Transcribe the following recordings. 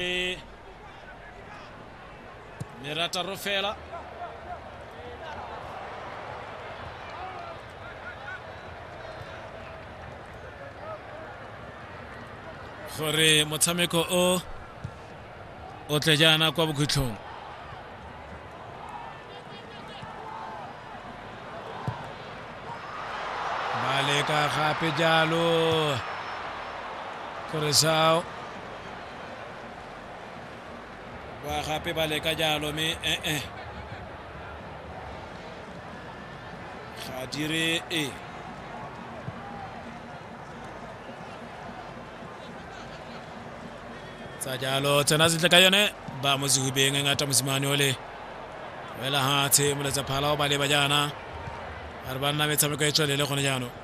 Eh, Merata Rofela gore motshameko o o tle jaana kwa bokhutlhong ba leka gape jalo gore sao ba gape ba leka jalo mme ee ga dire e tsa jalo tsena sentle ka yone ba mo sehubeng e ngata mosimane ole wela hatshe moletsa phala o ba leba jaana a re ba nna metshameko e tswelele gone jaanong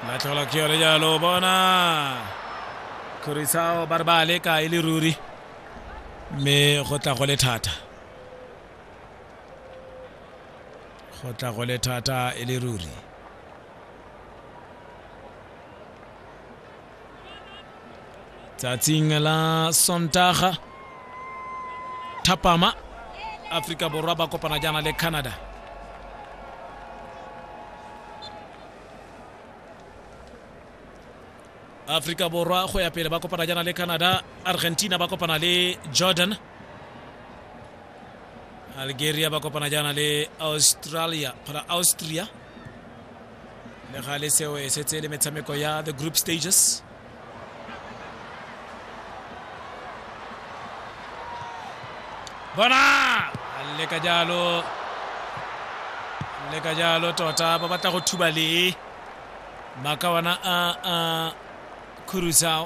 la thola ke yone jalo bona kgorisao ba re ba leka e le ruri mme go tla go le thata go tla go le thata e le ruri tsatsing la sontaga thapama aforika borwa ba kopana jaana le canada aforika borwa go ya pele ba kopana jaana le canada argentina ba kopana le jordan algeria ba kopana jaana le australia para austria le gale seo e setse le metshameko ya the group stages bona le ka jalo le ka jalo tota ba batla go thuba le maka ona a a khurusao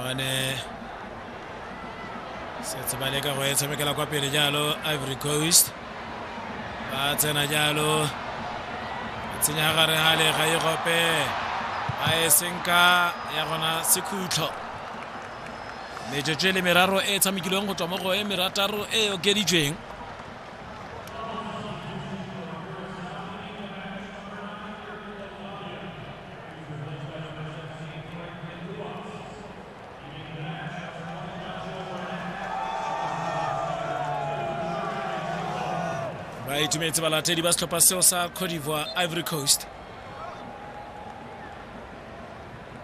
bane setse ba leka go e tshamekela kwa pele jalo ivory coast ba tsena jalo tsenya gare ga lega e gope a e senka ya gona sekhutlho metsotso e le meraro e tshamekilweng go tswa mo go e merataro e okeditsweng ba itumetse balatedi ba setlhopha seo sa cote d'ivoire ivory coast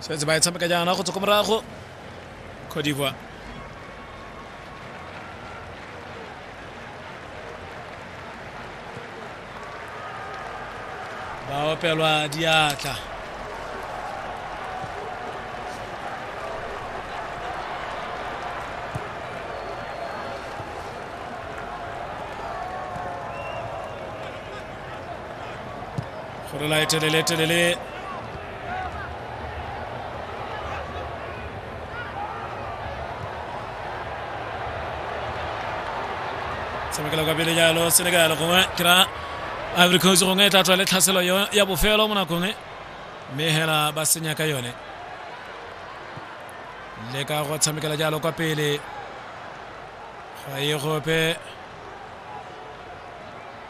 setse ba e tshameka jaana go tswa ko morago cote d'ivoire ba opelwa diatla go rela e telele telele tshamekela kwa pele jalo senegal gongwe ke ra ivory coast gongwe e tla tswa le tlhaselo yo- ya bofelo mo nakong e mme hela ba senya ka yone le ka go tshamekela jalo kwa pele ga e gope